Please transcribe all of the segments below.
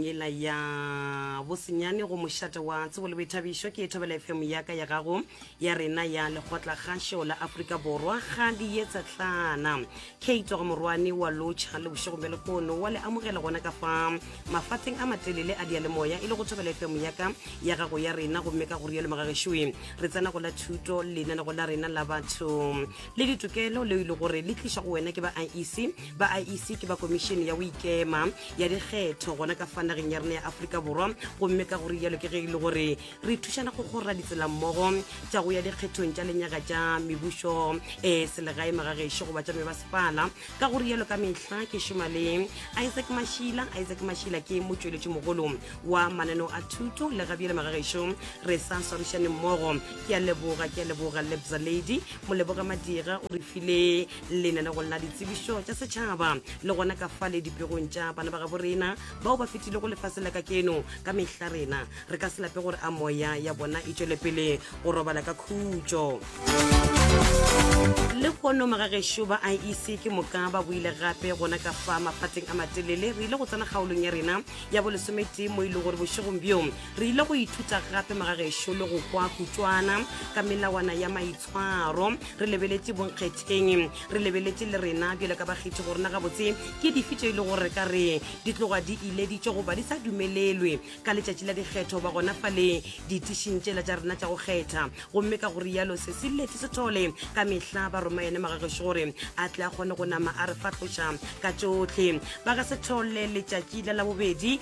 yela ya bosenyane go mošate wa tsebo le boithabišo ke thobela fm yaka ya gago ya rena ya lekgotla kgašo la aforika borwa ga di ye tsatlana keito ga morwane wa lotšha le bošego bja lekono wa le amogela gona ka fa mafateng a matelele a dialemoya e le go thobela fm yaka ya gago ya rena gomme ka go rialo magagešoe re tsena go la thuto lenanego la rena la batho le ditokelo leo e le gore le tliša go wena ke ba iec ba iec ke ba komišene ya go ikema ya dikgetho gona ka fa nageng ya rena ya aforika borwa gomme ka gore jalo ke ge e le gore re thušana go kgorra ditselammogo tša go ya dikgethong tša lenyaga tša mebušo um eh, selegae magagešo goba tša mebasepala ka gore jalo ka mehla ke šoma le isaac mašila isaac mašila ke motšweletši mogolo wa mananeo a thuto le gabjele magagešo re sa swarišaneng mmogo ke a leboga ke a leboga lebza lady moleboge madira o re file lenanegong la ditsebišo tša setšhaba le gona ka fa le dipegong tša bana ba gabo rena bao ba fetile go lefase la ka keno ka mehla rena re ka se lape gore a moya ya bona e tšwele pele go robala ka khutšo le kono magagešo ba iec ke moka ba boile gape gona ka fa maphateng a matelele re ile go tsena kgaolong ya rena ya bolesometee mo e le gore bošegong bjo re ile go ithuta gape magagešo le go kwa kutswana ka melawana ya maitshwaro re lebeletše bonkgetheng re lebeletše le rena bjale ka bakgethi go rena gabotse ke dife tše e le gore re ka re di tloga di ileditše goba di sa dumelelwe ka letšatši la dikgetho ba gona fa le ditišing tšela tša rena tša go kgetha gomme ka go rialo se se lete se thole ka mehla ba roma yene magagešo gore a tle a kgone go nama a re fatloša ka tšohle ba ga se thole letšatši la labobedi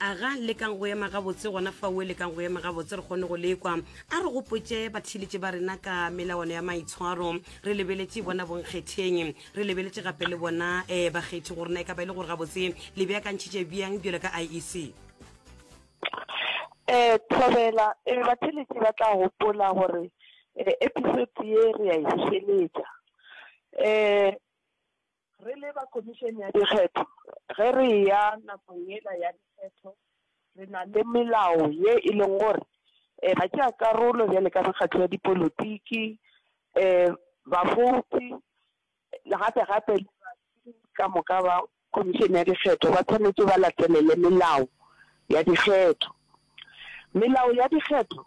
Aga, lekang go ema gabotse gona faue, lekang go ema gabotse re kgone go lekwa. A re gopotše batheeletši ba rena ka melawana ya maitshwaro. Re lebeletše bona bonkgetheng. Re lebeletše gape le bona um bakgethi gore na e ka ba e le gore gabotse le beakantšhitše bjang bjalo ka IEC. Um, thobela, um batheeletši ba tla gopola gore um episode ye re a e bušeletša. Um. Re le ba Khomišene ya Dikgetho, ge re eya nakong yela ya dikgetho, re na le melao ye e lego gore batšeakarolo bjalo ka mekgatlo ya dipolotiki, bafouti le gape gape le batho ka moka ba Khomišene ya Dikgetho ba swanetše ba latelele melao ya dikgetho. Melao ya dikgetho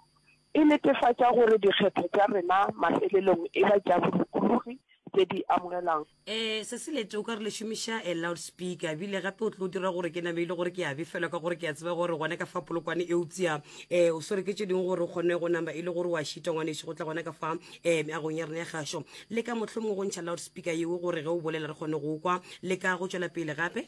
e netefatša gore dikgetho tša rena mafelelong e ba tša bolokologi tše di amogelwang. Ee, se se lete o ka re le šomiša a loudspeaker, ebile gape o tlo dira gore ke name e le gore ke a befelwa ka gore ke a tseba gore gona ka fa polokwane eupša um o swere ke tše dingwe gore o kgone go nama e le gore o a šita ngwanešu go tla gona ka fa um meagong ya rena ya gašo. Le ka mohlomongwe go ntšha loudspeaker yeo gore ge o bolela re kgone go o kwa, le ka go tšwela pele gape.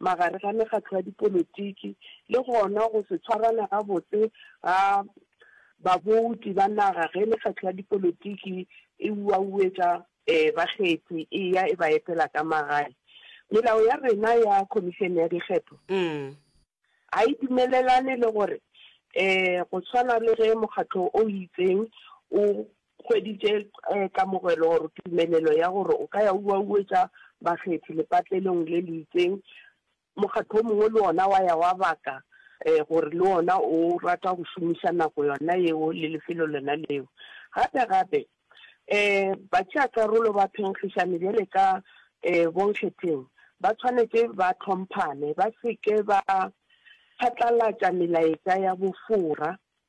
magare ga mekgatlo ya dipolotiki le gona go se tshwarana gabotse ga babouti ba naga ge mekgatlo ya dipolotiki e uauetša bakgethi e ya e ba etela ka magae. Melao ya rena ya Khomišene ya Dikgetho ga e dumelelane le gore go swana le ge mokgatlo o itseng o Kgwedi tše ka mogwelo gore tumelelo ya gore o ka ya o uauetša bakgethi lepatlelong le le itseng, mokgatlo o mongwe le wona wa ya wa baka gore le wona o rata go šomiša nako yona yeo le lefelo lona leo. Gape gape, batšeakarolo ba phenkgišano bjale ka bonkgetheng ba tshwanetše ba hlomphane, ba se ke ba phatlalatša melaetša ya bofora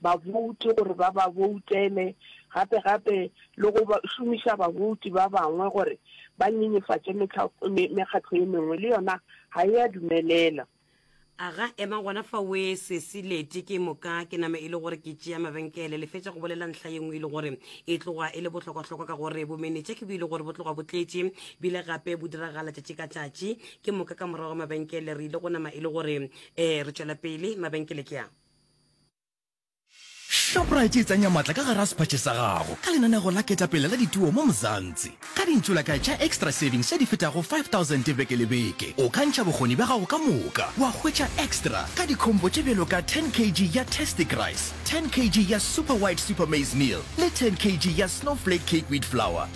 babouti gore ba ba boutele, gape gape le go šomiša babouti ba bangwe gore ba nyenyefatše mekgatlo ye mengwe, le yona ga e a dumelela. A ga ema gona fa we sesi Leti, ke moka ke nama e le gore ke tšea mabenkele. Le fetša go bolela ntlha ye nngwe e le gore e tloga e le bohlokwahlokwa ka gore bomenetša ke bo e le gore bo tloga bo tletše, bile gape bo diragala tšatši ka tšatši. Ke moka ka morago ga mabenkele re ile go nama e le gore re tšwela pele. Mabenkele ke a. Shoprite e tsenya matla ka gar'a sephatše sa gago ka lenanego la ketapele la dituo mo Mzansi. Ka dintšolakae tša Extra Savings tše di fetago 5000 beke le beke, o ka ntšha bokgoni bja gago ka moka wa hwetša extra ka dikhombo tše bjalo ka 10 kg ya Tastic Rice, 10 kg ya Super White Super Maize Meal le 10 kg ya Snowflake Cake Wheat Flour.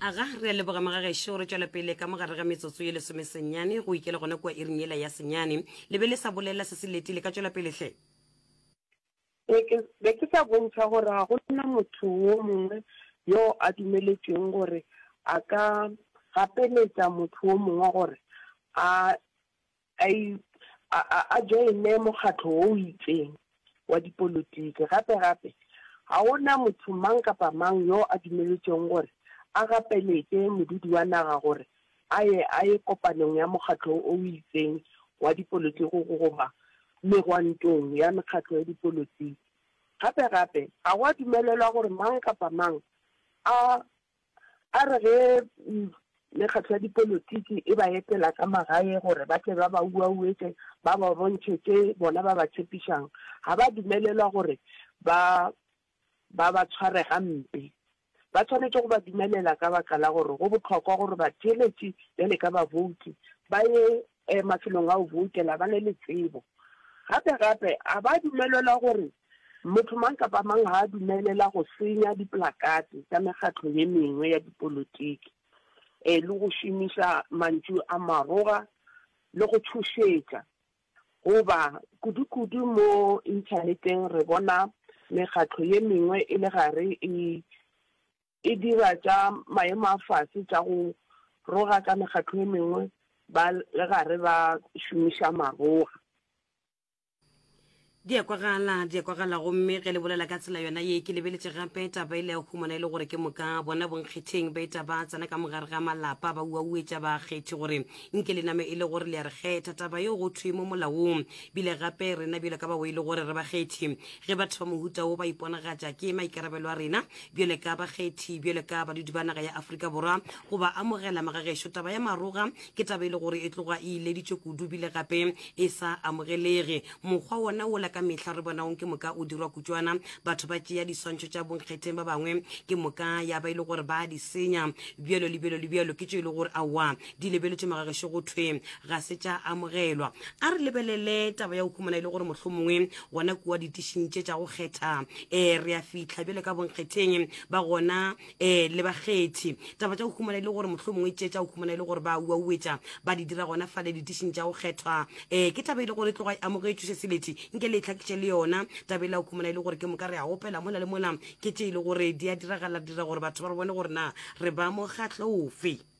aga re a leboga magagešo re tšwela pele ka mogare ga metsotso ye lesome senyane go ikele gona kua iring yela ya senyane le be le sa bolela se se leti le ka tšwela pele hle be ke sa bontšha gore ga go na motho wo mongwe yo a dumeletšweng gore a ka gapeletša motho wo mongwe gore a a i, a, a, a joine mokgatlo wo o itseng wa dipolotiki. Gape, gape, ga go na motho mang kapa mang yo a dumeletšwego gore a gapeletše modudi wa naga gore a ye, a ye kopanong ya mokgatlo wo o itseng wa dipolotiki goba megwantong ya mekgatlo ya dipolotiki. Gape, gape, ga go a dumelelwa gore mang kapa mang a A re ge mekgatlo ya dipolotiki e ba etela ka magae gore ba tle ba ba uauetše ba ba bontšhe tše bona ba ba tšhepišang, ga ba dumelelwa gore ba ba ba tshware gampe. Ba swanetše go ba dumelela ka baka la gore go bohlokwa gore batheeletši bjale ka babouti ba ye e mafelong a go boutela ba na le tsebo. Gape gape a ba dumelelwa gore motho mang kapa mang ga a dumelela go senya diplakate tša mekgatlo ye mengwe ya dipolotiki e le go šomiša mantšu a maroga le go tšhošetša. Goba kudukudu mo Inthaneteng re bona mekgatlo ye mengwe e le gare e e dira tša maemo a fase tša go roga ka mekgatlo e mengwe ba le gare ba šomiša maroga. Di a kwagala, di a kwagala gomme ge le bolela ka tsela yona ye ke lebeletše gape taba e le ya humana e le gore ke moka bona bonkgetheng ba eta ba tsena ka mogare ga malapa ba uauetša bakgethi gore nke le name e le gore le ya re kgetha taba yeo go thwe mo molaong bile gape rena bjalo ka bao e le gore re bakgethi ge batho ba mohuta wo ba iponagatša ke maikarabelo a rena bjale ka bakgethi bjale ka badudi ba naga ya aforika borwa go ba amogela magagešo taba ya maroga ke taba e le gore e tloga e ileditšwe kudu bile gape e sa amogelege mokgwa wona wola ka mehla re bonaong ke moka o dirwa kutšwana batho ba tšea diswantšho tša bonkgetheng ba bangwe ke moka ya ba e le gore ba di senya bjalo le bjalo le bjalo ke tšo e le gore aowa di lebeletše magagešo go thwe ga se tša amogelwa a re lebelele taba ya go humana e le gore mohlho mongwe gona kua ditišing tše tša go kgetha um eh, re ya fitlha bjale ka bonkgetheng ba gona um le bakgethi taba tša go humana e le gore mohlho mongwe tše tša go humana e le gore ba uauetša ba di dira gona fale ditišing tša go kgethwa um ke taba e le gore e tloga e amogetšwe se seletše nke le e tlhakiše le yona taba e le ya go humana e le gore ke moka re a opela mola le mola ke tše e le gore di a diragala dira gore batho ba re bone gore na re ba mokgatlho ofe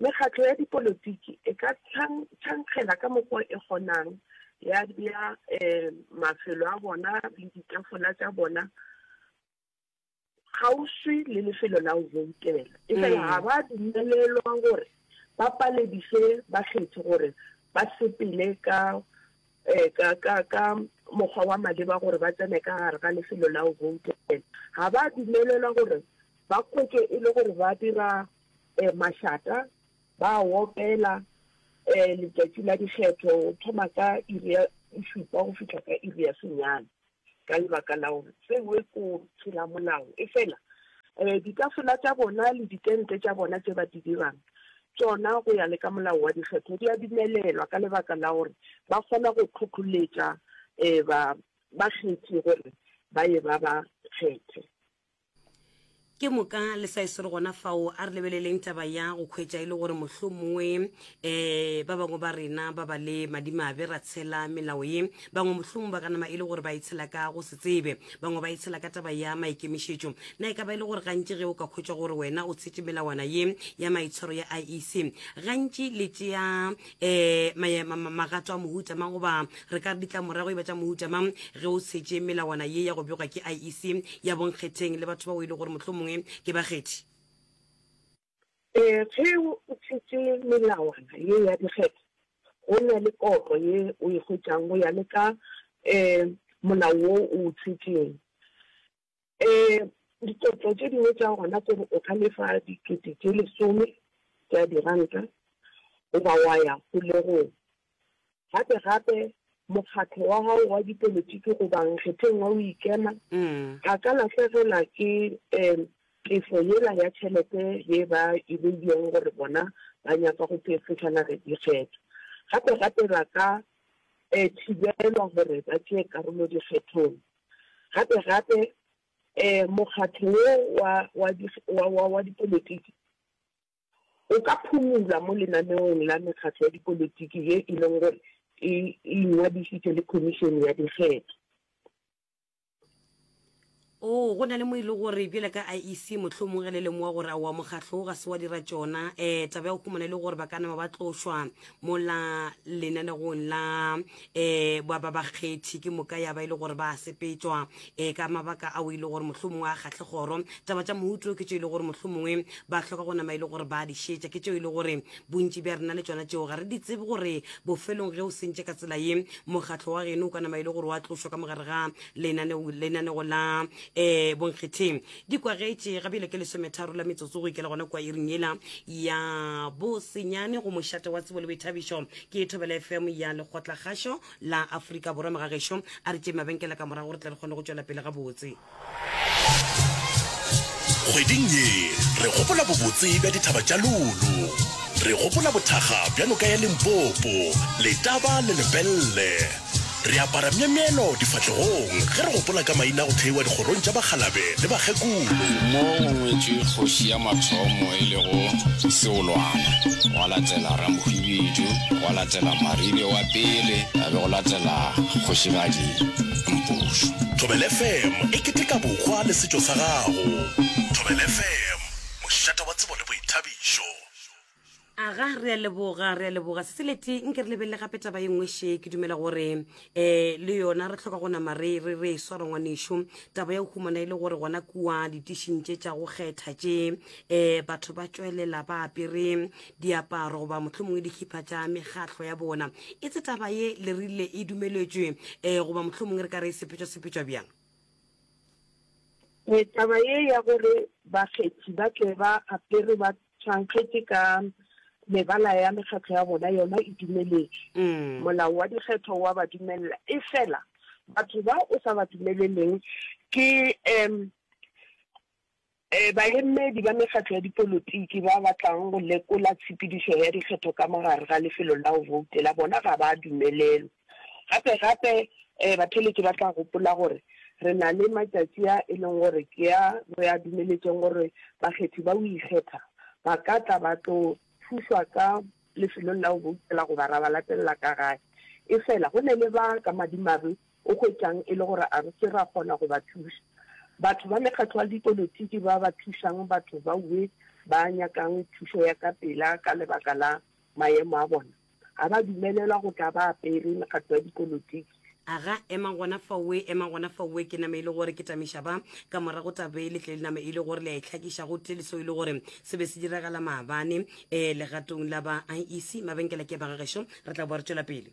Mekgatlo ya dipolotiki e ka tšhankgela ka mokgwa e kgonang, ya bea mafelo a bona le ditafola tša bona kgauswi le lefelo la go boutela, efela ga ba dumelelwa gore ba palediše bakgethi gore ba sepele ka mokgwa wa maleba gore ba tsene ka gare ga lefelo la go boutela. Ga ba dumelelwa gore ba kwetšwe e le gore ba dira um mašata, ba a opela, um letšatši la dikgetho go thoma ka iri ya bošupa go fihla ka iri ya senyane, ka lebaka la gore seo e ko tšhilamolao. Efela um ditafola tša bona le ditente tša bona tše ba di dirang, tšona go ya le ka molao wa dikgetho di a dumelelwa, ka lebaka la gore ba kgona go hlohloletša um ba bakgethi gore ba ye ba ba kgethe. Ke moka le sa e swere gona fao, a re lebeleleng taba ya go khwetša e le gore mohlomongwe um ba bangwe ba rena ba ba le madimabe ra tshela melao ye. Bangwe mohlomong ba ka nama e le gore ba e tshela ka go se tsebe, bangwe ba e tshela ka taba ya maikemišetšo. Na e ka ba e le gore gantši ge o ka khwetša gore wena o tshetše melawana ye ya maitshwaro ya IEC, gantši le tšea um magato a mohuta mang goba re ka ditla morago e ba tša mohuta mang ge o setse melawana ye ya go bjogwa ke iec ya bonkgetheng le batho ba o e le gore mohlho mongwe ke bakgethi um ge o tshetse melawana ye ya dikgetho go na le koro ye o e hwetšang go ya le ka um molao wo o o tshetseng Ee, ditlotlo tše dingwe tša gona ke gore o ka lefa dikete tše lesome tša diranta goba wa ya kgolegong. Gape gape, mokgatlo wa gago wa dipolotiki goba nkgetheng wa boikema a ka lahlegelwa ke tefo yela ya tšhelete ye ba e beilego gore bona ba nyaka go tefošana le dikgetho. Gape gape ba ka thibelwa gore ba tšee karolo dikgethong. Gape-gape, um mokgatlo wo wa, wa di, wa, wa, wa dipolitiki o ka phumula mo lenaneong la mekgatlo ya dipolitiki ye e leng gore e, e ingwadišitše le Khomišene ya Dikgetho. Oo, go na le mo e le gore, bjale ka IEC, mohlomong ge le lemoga gore aowa mokgatlo wo ga se wa dira tšona, um taba ya go humana e le gore ba ka nama ba tlošwa mola lenanegong la. eh ba ba bakgethi ke moka ya ba ile e gore ba sepetswa eh ka mabaka a o ile e gore mohlomongwe a kgahle goro taba tša mohuto ke tšeo ile e gore mohlomongwe ba hloka go nama ile e gore ba di šetša ke tšeo ile e gore bontši bja rena le tšona tšeo ga re di tsebe gore bofelong ge o sentše ka tsela ye mokgatlho wa geno o ka nama ile e gore wa tlošwa ka mogare ga lenanego la um bonkgetheng Di kwagetše gabjale ke lesometharo la metsotso go ikela gona kwa iring yela ya bosenyane go mošate wa tsebo le boithabišo. Ke Thobela FM ya lekgotlakgašo la Afrika Borwa. Mogagešo a re tšee mabenkela ka morago gore tle re kgone go tšwela pele gabotse. Kgweding ye re gopola bobotse bja dithaba tša Lulu. Re gopola bothakga bja noka ya Limpopo, Letaba le Lepelle. Re apara myemyelo difahlegong ge re gopola ka maina a go theiwa dikgorong tša bakgalabe le bakgekolo. Mo go ngwetšwe kgoši ya mathomo e lego Seolwana, gwa latela Ramhwibidu, gwa latela Marile wa pele, ga be go latela Kgošigadi Mpušu. Thobel FM e keteka bohwa le setšo sa gago. Thobel FM, mošate wa tsebo le boithabišo. aga re a leboga re a leboga seseleti nke re lebelele gape taba e nngwe she ke dumela gore um le yona re tlhoka go nama re re re e swara ngwanešo taba ya go humana e le gore gona kua ditishing tše tša go kgetha tše um batho ba tšwelela ba apere diaparo goba motlho mongwe dikhipa tša mekgatlho ya bona e tse taba ye le rile e dumeletšwe um goba motlho mongwe re ka re e sepetšwa sepetšwa bjang e taba ye ya gore bakgethi ba tle ba apere ba Tšhankgetse ka mebala ya mekgatlo ya bona yona e dumeletšwe. Molao wa dikgetho wa ba dumelela. Efela batho ba o sa ba dumeleleng ke um baemedi ba mekgatlo ya dipolotiki ba batlang go lekola tshepedišo ya dikgetho ka mo gare ga lefelo la go boutela. Bona ga ba dumelelwe. Gape-gape, batheeletši ba tla gopola gore re na le matšatši a e lego gore ke a re a dumeletšeng gore bakgethi ba go ikgetha ba ka tla ba tlo thušwa ka lefelong la go boutela goba ra ba latelela ka gae. Efela, go na le ba ka madimabe o hwetšang e le gore a re ke ra kgona go ba thuša. Batho ba mekgatlo ya dipolotiki ba ba thušang batho baowe ba nyakang thušo ya ka pela ka lebaka la maemo a bona. Ga ba dumelelwa go tla ba apere mekgatlo ya dipolotiki. Aga, ema gona faowe, ema gona faowe. Ke nama e le gore ke tamiša ba. Ka morago taba e le tle le nama e le gore le a e hlakiša gotee le seo e le gore se be se diragala maabane um legatong la ba IEC. Mabenkela ke ba ga gešo. Re tla boa re tšwela pele.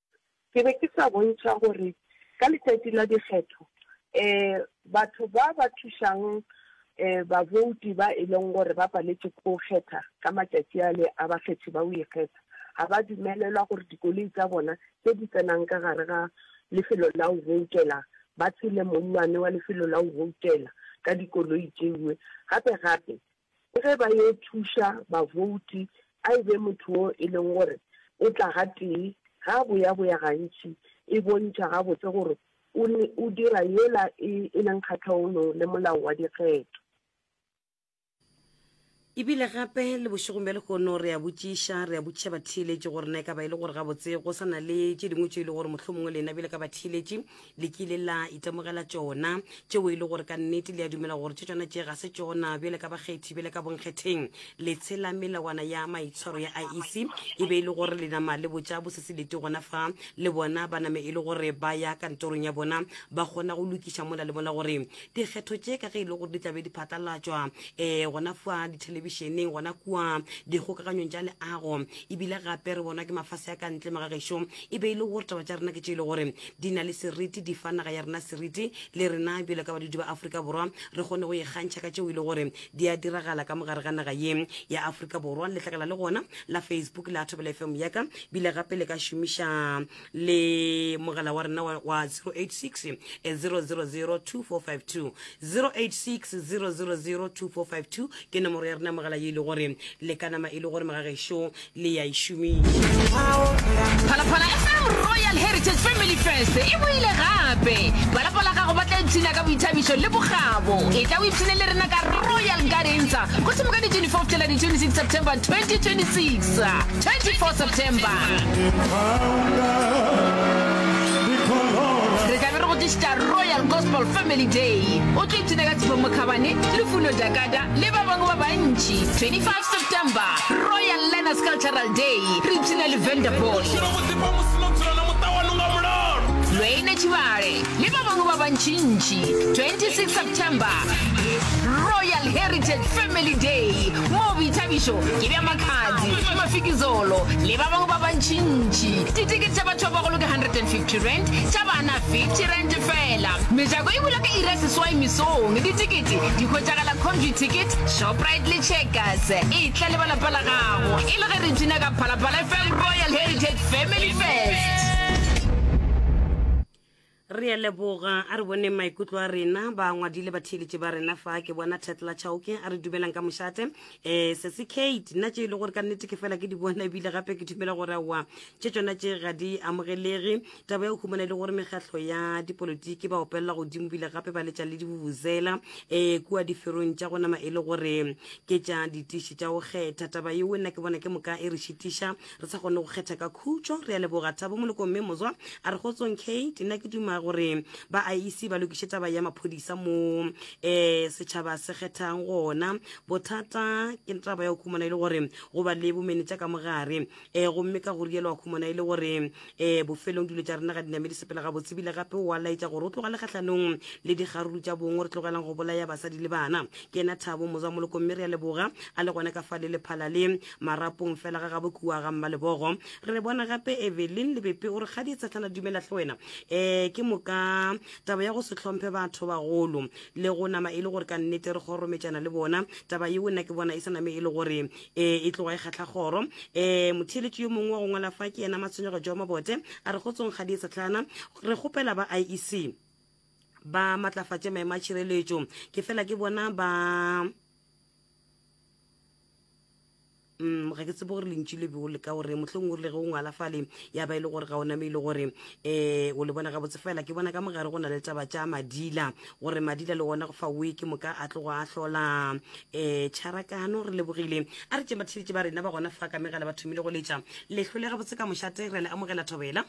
Ke be ke sa bontšha gore ka letšatši la dikgetho batho ba ba thušang babouti ba e leng gore ba paletše ke go kgetha ka matšatši ale a bakgethi ba go ikgetha ga ba dumelelwa gore dikoloi tsa bona tše di tsenang ka gare ga lefelo la go boutela ba tshele mollwane wa lefelo la go boutela ka dikoloi tše dingwe. Gape-gape Le ge ba yo thuša bavouti, a e be motho wo e leng gore o tla gatee, ga a boyaboya gantši e bontšha gabotse gore o ne o dira yela e e leng kgahlaonong le molao wa dikgetho. E bile gape le bošegong bja lehono re a botšiša, re a botšiša batheeletši gore na e ka ba e le gore gabotse go sa na le tše dingwe tšeo e lego gore mohlomongwe lena bjale ka batheeletši le kile la itemogela tšona tšeo e le gore ka nnete le a dumela gore tše tšona tše ga se tšona bjale ka bakgethi bjale ka bonkgetheng le tshela melawana ya maitshwaro ya iec e be e le gore le nama le botša boseselete gona fa le bona ba name e le gore ba ya kantorong ya bona ba kgona go lokiša mola le mola gore dikgetho tše ka ge e le gore di tlabe di phatlalatšwa um eh, gona fa dithelebišeneng gona kua dikgokaganyong tša leago ebile gape re bonwa ke mafase a ka ntle magagešo e be e le gore taba tša rena ke tše e le gore di na le seriti, di fa naga ya rena seriti, le rena bjalo ka badudi ba Afrika Borwa re kgone go ikgantšha ka tšeo e le gore di a diragala ka mogare ga naga ye ya Afrika Borwa. Letlakala le gona la Facebook la Thobela FM ya ka bile gape le ka šomiša le mogala wa rena wa 086 000 2452 086 000 2452 ke nomoro ya rena mogala ye e le gore le ka nama e le gore magagešo le ya e šomiša phalaphala e farm royal heritage family fest e boile gape balapa la gago ba tla ipshina ka boithabišo le bogabo e tla o ipshine le rena ka royal gardensa go thimo ka di-24 tela di-26 september 2026 24 september re tlabe re go tlišitša royal gospel family day o tlo ipshina ka tshifo mokhabane lefuno jakata le ba bangwe ba bantši 25 September, Royal Learners Cultural Day, re ipshina le Vanderbosch. Lweine Tšhibale le ba bangwe ba bantšintši, 26 September, Royal Heritage Family Day, moo boithabišo ke bja Makhadzi, Mafikizolo le ba bangwe ba bantšintši. Ditikete tša batho ba bagolo ke R150, tša bana R50 feela. Mejako e bula ka iri ya seswai mesong. Ditikete di hwetšagala Comvy Ticket, Shoprite le Checkers e tla le ba lapa la gago e le ge re tuna ka Phalaphala FM Royal Heritage Family Fest. Re a leboga, a re boneng maikutlo a rena, ba ngwadile batheeletše ba rena fa ke bona Tetla Chauke a re dumelang ka mošate. Eh, Sesi Kate, nna tše e le gore ka nnete ke fela ke di bona ebile gape ke dumela gore aowa tše tsona tše ga di amogelege. taba ya go humana e le gore mekgatlho ya dipolotiki ba opelela godimo bile gape ba letša le dibubuzela um eh, kua diferong tša go nama e le gore ke tša ditiši tša go kgetha taba yeo nna ke bona ke moka e re šitiša re sa kgone go kgetha ka khutšo re ya leboga thabo molokong mme mozwa a re gotsong kate nna ke duma gore ba a ise ba lokiše taba ya maphodisa mo um setšhaba se kgethang gona bothata ke taba ya go humana e le gore go ba le bomenetša ka mogare um gomme ka go rialo a khumana e le gore um bofelong dilo tša rena ga dinamedi sepela ga botsebile gape oa laetša gore o tlogale kgatlhanong le dikgaruru tša bong re tlogelang go bolaya basadi le bana ke ena thabo mozamoloko mme re ya leboga a le gone ka fa le lephala le marapong fela ga gabo kua ga mma lebogo re re bona gape evelyn lebepe o re kgadi e tshetlana dumela tlhe wena um ke moka taba ya go se tlhomphe batho bagolo le go nama e le gore ka nnete re kgorometšana le bona taba yeo nna ke bona e sa name e le gore e e tloga e kgatla kgoro um motheeletši yo mongwe wa go ngwala fa ke yena matshwenyego jo mabote a re kgotsong ga die setlhana re kgopela ba iec ba matlafatše maemo a tšhireletšo ke fela ke bona ba um ga ke tsebo gore lentši le be o leka gore mohleng o rile ge o ngwala fale ya ba e le gore ga o nameile gore um o le bona gabotse fela ke bona ka mogare go na le taba tša madila gore madila le wona go fa weke moka a tlogo a hlola um tšharakano re lebogile a re tšeng ba theletše ba rena ba gona fa ka megala ba thomile go letša lehlo le gabotse ka mošate re a le amogela thobela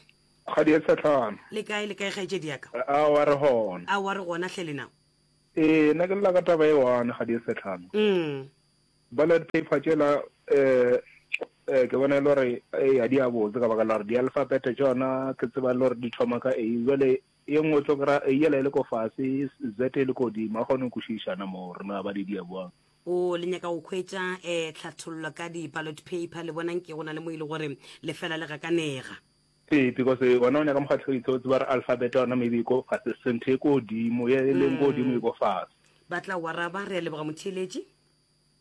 kgadi ya setlhano le kae le kae kgaetšedi yaka a wa re gona a wa re gona hle lena ee nna ke lela ka taba e one kgadi ya setlhano mm. ballot paper tšela um eh, ke bona e le gore e a di a botse ka baka la gore di-alphabet tsona ke tseba e le gore di thoma ka a jale Ye nngwe o tlo kry-a A yela e le ko fase, Z e le kodimo. A kgone go kwešiša na moo gore na ba di dia bjang. O le nyaka go hwetša eh tlhathollo ka di ballot paper, le bona nke go na le mo e le gore le fela le gakanega. Ee, because wena o nyaka mokgahlelitse o tseba gore alphabet ya yona maybe e ko fase senthe e ko godimo, ye e leng ko godimo e ko fase. Ba tla go araba, re a leboga motheeletši.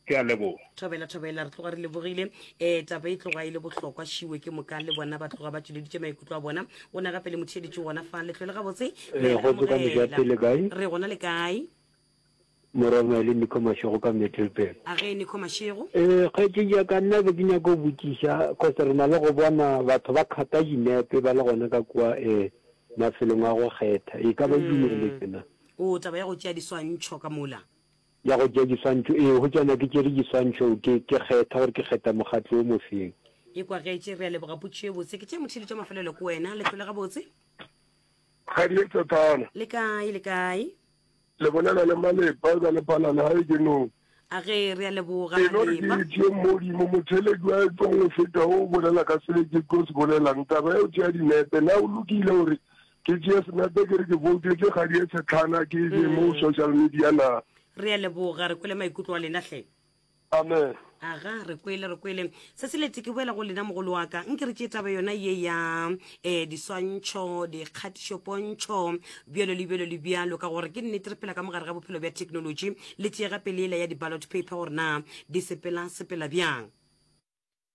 Ke a leboga. Thobela, Thobela, re tloga re lebogile. Ee, taba e tloga e le bohlokwa, šiwe ke moka le bona ba tloga ba tšweleditše maikutlo a bona. O ne gape le mo theeditše gona fa letlole gabotse. Re a le amogela. Re gona le kae? Morongwa le Nico Mashego ka Middelburg. A ge Nico Mashego? Ee, kgaetšedi ya ka, nna be ke nyaka go botšiša, cause re na le go bona batho ba khata dinepe ba le gona ka kua um mafelong a go kgetha. E ka ba e dumeletse na? O taba ya go tšea diswantšho ka mola? Ya go tšea diswantšho, ee, go tšwana ke tšere diswantšho, ke, ke kgetha gore ke kgetha mokgatlo o mofeng. E kwagetše, re a leboga potšišo e botse. Ke tše mothedi tša mafelelo ko wena. Le hlole gabotse. Kgadi e Tsatsana. Le kae, le kae? Le bolela le Malepa, eba le phala lehae ke nong? A ge re a leboga, Malepa. E no re ke ithie Modimo, motheledi wa e tong go feta wo o bolela ka sebe ke tlo se bolelang. Taba ya go tšea dinepe, na o lokile gore Ke tšee senepe ke re ke voutetse kgadi e tshetlhana ke e mo mm. social media na. Re a leboga re kwele maikutlo a lena hle. Amen. aga re kwele re kwele se se lete ke boela go lena mogolo wa ka nke re tše taba yona ye ya um diswantšho dikgatišopontšho bjalo le bjalo le bjalo ka gore ke nnete re phela ka mogare ga bophelo bja technology le tšeega peleela ya di-ballot paper gore na di sepela sepela bjang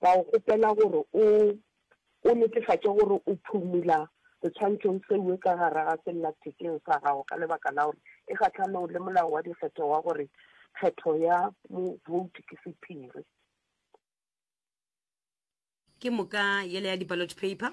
Ka go kgopela gore o, o netefatše gore o phumula setswantšhong seue ka gare ga sellathekeng sa gago ka lebaka la gore e kgahlanong le molao wa dikgetho wa gore kgetho ya movouti ke sephiri. Ke moka yela ya di-ballot paper.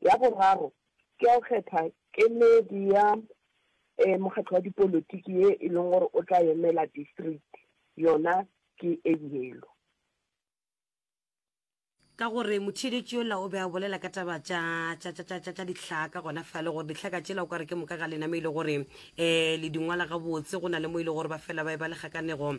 Ya boraro, ke ya go kgetha kemedi ya mokgatlo wa dipolotiki ye e leng gore o tla emela distriki, yona ke e yelo. Ka gore motheeletši yola o be a bolela ka taba tša, tša, tša, tša, tša, tša dihlaka gona fale, gore dihlaka tšela o ka re ke moka ga lename e le gore, ee, le di ngwala gabotse, go na le mo e le gore ba fela ba e ba le kgakanego,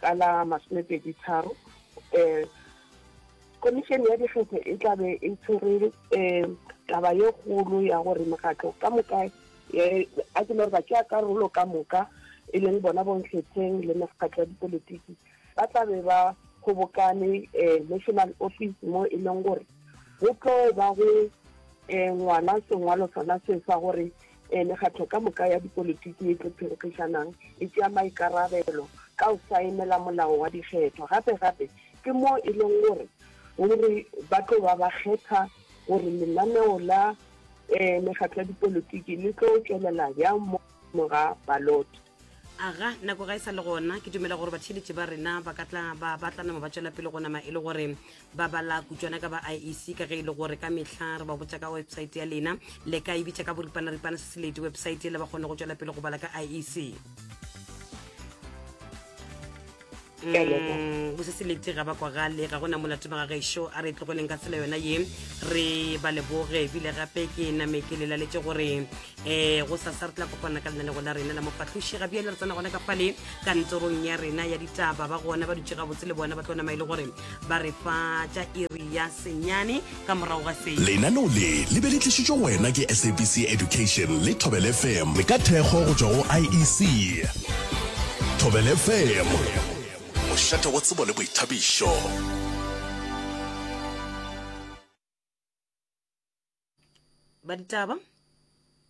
Ka la masomepedi tharo um komišene ya dikgetho e tla be e tshwere um taba ye kgolo ya gore mokgatlo ka moka e, a ke le gore ba tšea karolo ka moka e leng bona bonkgetheng le mekgatlo ya dipolitiki ba tla be ba kgobokane um national office mo e leng gore go tlo ba go um ngwala sengwalo sona se sa gore e mekgatlo ka moka ya dipolitiki e tlo phenkgišanang e tšea maikarabelo ka go saenela molao wa dikgetho gape gape ke moo e leng gore gore ba tlo ba ba kgetha gore lenaneo la um mekgatlo ya dipolitiki le tlo tšwelela bjang mo ga balot aga nako ga e sa le gona ke dumela gore batheeletši ba rena ba ka tla ba batla nama ba tšwela pele go nama e le gore ba bala kutswana ka ba iec ka ge e le gore ka mehla re ba botsa ka websaete ya lena le ka e bitša ka boripanaripana se seledi websaete le ba kgone go tšwela pele go bala ka iec Mm, go se se lete ga bakwa gale ga gona molato ba ga gešo a re e tlogeleng ka tsela yona ye re ba leboge ebile gape ke name ke lelaletse gore um go sasa re tla kopana ka lena le gona rena la mofahloši ga bjale re tsena gona ka fale kantorong ya rena ya ditaba ba gona ba dutse gabotse le bona ba tlo nama e le gore ba re fa tša iri ya senyane ka morago ga se lenaneo le le be le tlišitšwe go wena ke sabc education le thobel fm le ka thekgo go tšwa go iec thobel fm mošate wa tsebo le boithabišo ba ditaba